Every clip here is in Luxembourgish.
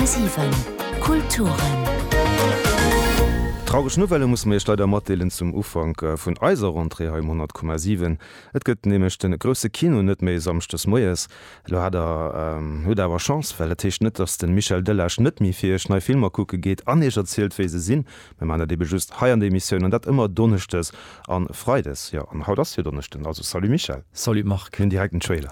10,7 Kulturen. Traureg Nouvelle musse mir Iech leider matdeelen zum Ufank vun eiser Rentrée hei um 10,7. Et gëtt nämlech de grousse Kino net méi e Samschdes moies. Elo hat der, hutt der awer Chance, well dat heescht net, datt de Michel Delage net méi fir Iech nei Filmer kucke geet an Iech erzielt wéi se sinn. Mir man dat ebe just hei an der Emissioun an dat ëmmer Donneschdes an Freides. Jo, an haut ass jo Donneschden, also salut Michel. Salut Marc. Mir hunn direkt en Trailer.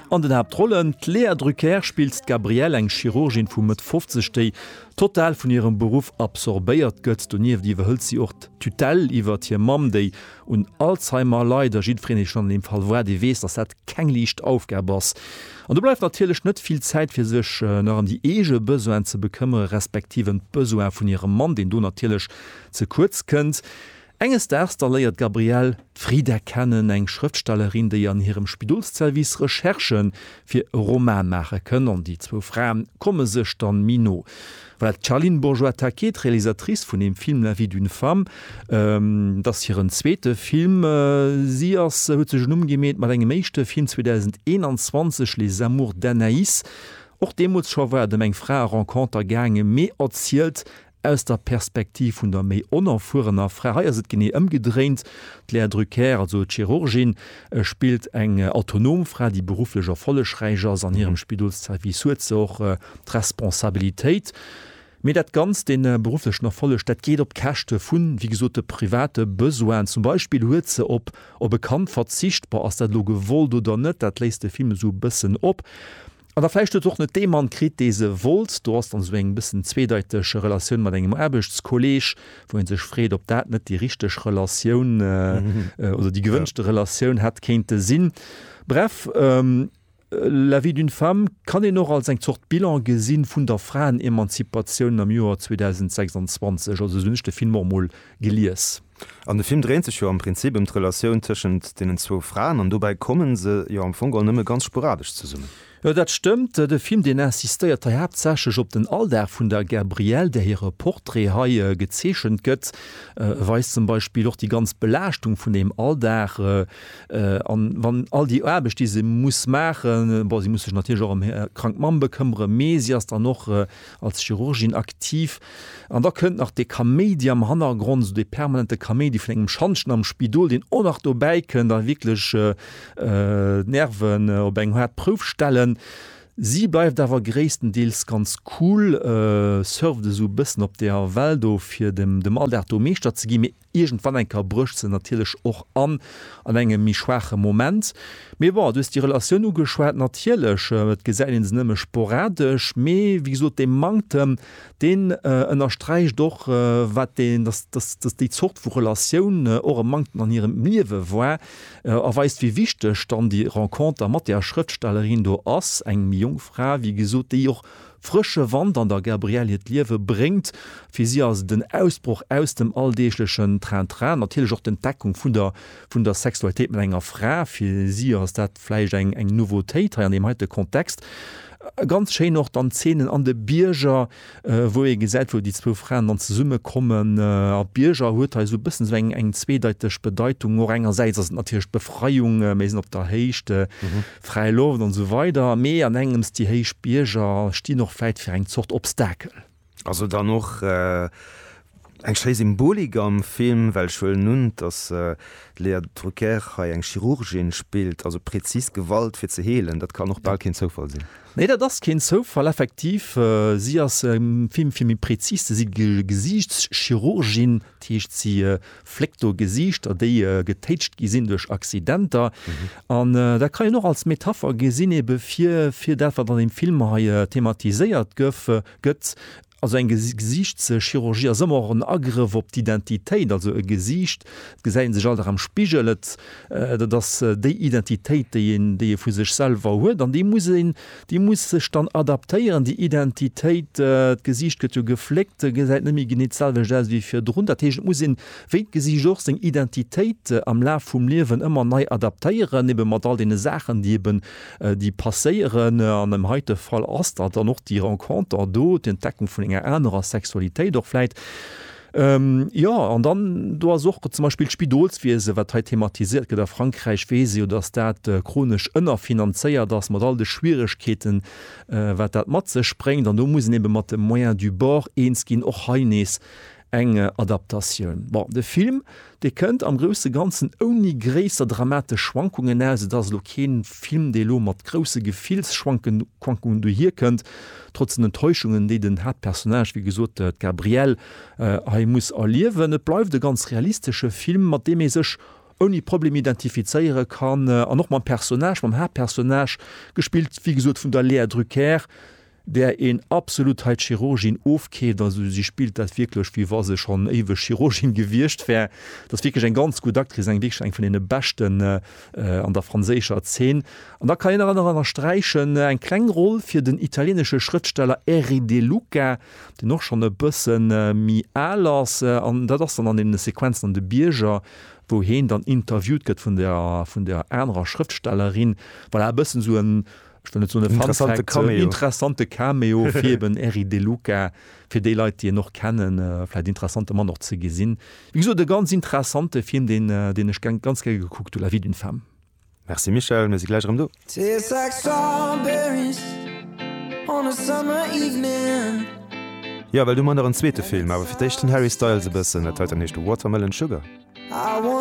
An den Haaptrollen, D'Léa Drucker spillt d'Gabrielle, eng Chirurgin vu Mëtt 50, déi total vun hirem Beruff absorbéiert gëtt. Donieft iwwerhëlt si och d'Tutelle iwwert hir Mamm, déi un Alzheimer leit. A jiddwereen, dee schonn an deem Fall war, dee weess, datt dat keng liicht Aufgab ass. An do bleift natierlech net vill Zäit, fir sech nach ëm déi eege Besoinen ze bekëmmere respektiv ëm d'Besoin vun hirem Mann, deen do natierlech ze kuerz kënnt. Enges Daags da léiert d'Gabrielle d'Frida kennen, eng Schrëftstellerin, déi an hirem Spidolsservice Recherchë fir e Roman maache kënn, an déi zwou Fraen komme sech dann méi no. Well d'Charline Bourgeois-Taquet, d'Realisatrice vun dem Film La vie d'une femme, et ass hiren zweete Film, si ass huet sech en Numm gemeet mat engem éischte Film 2021, Les amours d'Anaïs, och deemools scho war et ëm eng Frae-Renconter gaangen, mee erzielt Aus der Perspektiv vun der méi onerfuerener Fra, hei ass et genee ëmgedréint, d'Lea Drucker, also d'Chirurgin, spillt eng autonom Fra, déi berufflech erfollegräich ass an hirem Spidolsservice, huet se och d'Responsabilitéit, mee dat Ganzt, dee berufflechen Erfolleg, dat geet op d'Käschte vu wéi gesot de private Besoinen. Zum Beispill huet se op op e Kand verzicht, bon, ass dat elo gewollt oder net, dat léisst de Film esou e bëssen op. An da vläicht huet se och net dee Mann kritt, dee se wollt. Do ass dann esou eng bëssen zweedeiteg Relatioun mat engem Aarbechtskolleeg, wou ee sech freet, ob dat net déi richteg Relatioun oder déi gewënschte Relatioun hätt kéinte sinn. Bref, La vie d'une femme kann een och als eng Zort Bilan gesi vun der Fraenemanzipatioun am Joer 2026. Also esou hunn ech de Film och emol gelies. An de Film dréint sech jo am Prinzip ëm d'Relatioun tëschent deenen zwou Fraen an dobäi komme se jo am Fong geholl nëmme ganz sporadesch zesummen. Jo, dat stëmmt. De Film, deen insistéiert hei haaptsächlech op den Alldag vun der Gabrielle, där hire Portrait hei gezeechent gëtt, weist zum Beispill och déi ganz Belaaschtung vun deem Alldag an wann all déi Aarbecht, déi se muss maachen, bon, si muss sech natierlech och ëm hir krank Mamm bekëmmere, mee si ass dann och als Chirurgin aktiv an da kënnt nach dee Kaméidi am Hannergrond, esou dee permanente Kaméidi vun engem Schantjen am Spidol, deen och nach dobäi kënnt a wierklech d'Nerven op eng haart Prouf stellen. Si bleift awer gréisstendeels ganz cool, surft esou e bëssen op der Well do, fir dem Alldag do Meeschter ze ginn, mee Iergendwann eng Kéier brécht se natierlech och an, an engem méi schwaache Moment. Mee bon, du hues déi Relatioun ugeschwat, natierlech, et gesäit ee se nëmme sporadesch, mee wéi gesot, dee Manktem, deen ënnersträicht och, wat deen, dass, dass, dass déi Zort vu Relatioun och e Manktem an hirem Liewe war, a weist, wéi wichteg dann déi Renconter mat där Schrëftstellerin do ass, eng méi jonk Fra, wéi gesot, déi och Frësche Wand an der Gabrielle hiert Liewe bréngt. Fir si ass et en Ausbroch aus dem alldeeglechen Train-Train, natierlech och d'Entdeckung vun der vun der Sexualitéit mat enger Fra. Fir si ass dat vläicht eng eng Nouveautéit hei an deem heite Kontext. Ganz schéin och dann d'Zeenen an de Bierger, wou ee gesäit, wou déi zwou Fraen dann zesumme kommen. A Bierger huet hei esou e bëssen esou eng eng zweedeiteg Bedeitung. Och engersäits ass et natierlech d'Befreiung, mir sinn op der Héicht, Fräi Loft an esou weider, mee an engems, déi héich Bierger stinn och vläit fir eng Zort Obstakel. Ass et dann och eng schéi Symbolik am Film, well ech huelen un, datt d'Léa Drucker hei eng Chirurgin spillt, also präzis Gewalt fir ze heelen, dat kann och bal keen Zoufall sinn. Nee, dat ass keen Zoufall, effektiv. Si ass am Film, fir méi präzis ze si, Gesiichtschirurgin, dat heescht si. Fléckt do Gesiichter, déi getéitscht gi sinn duerch Accidenter. An dat kann een och als Metapher gesinn ebe fir, fir dat, wat an deem Film hei thematiséiert gëff, gëtt. Also eng Gesiichtschirurgie ass ëmmer och en Agrëff op d'Identitéit. Also e Gesiicht, et gesäit ee sech all Dag am Spigel, et, dat ass déi Identitéit, déi een, déi ee vu sech selwer huet. An déi muss een. Déi muss sech dann adaptéieren, déi Identitéit. D'Gesiicht gëtt jo gefléckt, se gesäit net méi genee d'selwecht aus wéi virdrun. Dat heescht, et muss een, wéi d'Gesiicht och, seng Identitéit am Laf vum Liewen ëmmer nei adaptéieren, ebe mat all deene Saachen, déi eben, déi passéieren. An am heite Fall ass dat dann och déi Renconter do, d'Entdeckung vun enger anerer Sexualitéit och vläit. Jo, an dann do ass och zum Beispill d'Spidolswiese, wat hei thematiséiert gëtt. A Frankräich weess ee jo, datt dat chronesch ënnerfinanzéiert ass, mat all de Schwieregkeeten, wat dat mat sech bréngt. An do muss een ebe mat de Moyens du bord eens ginn. Och hei nees eng Adaptatioun. Bon, de Film, Dee kënnt am grousse Ganzen ouni gréisser dramatesch Schwankungen aus. Et ass elo kee Film, dee elo mat grousse Gefillsschwankungen dohier kënnt, trotz den Enttäuschungen, déi den Haaptpersonnage, wéi gesot, d'Gabrielle, hei muss erliewen. Et bleift e ganz realistesche Film, mat deem ee sech ouni Problem identifizéiere kann an och mam Personnage, mam Haaptpersonnage, gespillt, wéi gesot, vun der Léa Drucker, där een absolut hei d'Chirurgin ofkeeft, also si spillt dat wierklech wéi wa se schonn éiweg Chirurgin gewiescht wär, dat ass wierklech eng ganz gutt Actrice, eng wierklech eng vun deene beschten an der franséischer Zeen. An da kann een nach ënnersträichen eng kleng Roll fir den italieenesche Schrëftsteller Erri De Luca, deen och schonn e bësse méi al ass, an dat ass dann an deene Sequenzen an de Bierger, wou heen dann interviewt gëtt vun der anerer Schrëftstellerin, voilà e bëssen esou en. ech wëll net soen e Fun Fact, interessante Cameo. en interessante Cameo fir eben Eric De Luca, fir déi Leit déi en och kennen, vläit interessante Mann och ze gesinn. Wéi gesot e ganz interessante Film deen deen ech geng ganz gär gekuckt hu, La vie d'une femme. Merci Michèle, mir si gläich erëm do. Tastes like strawberries on a summer evening. Jo, well du man nach en zweete Film, awer fir d'éischt den Harry Styles e bëssen, dat hei dann heescht Watermelon Sugar.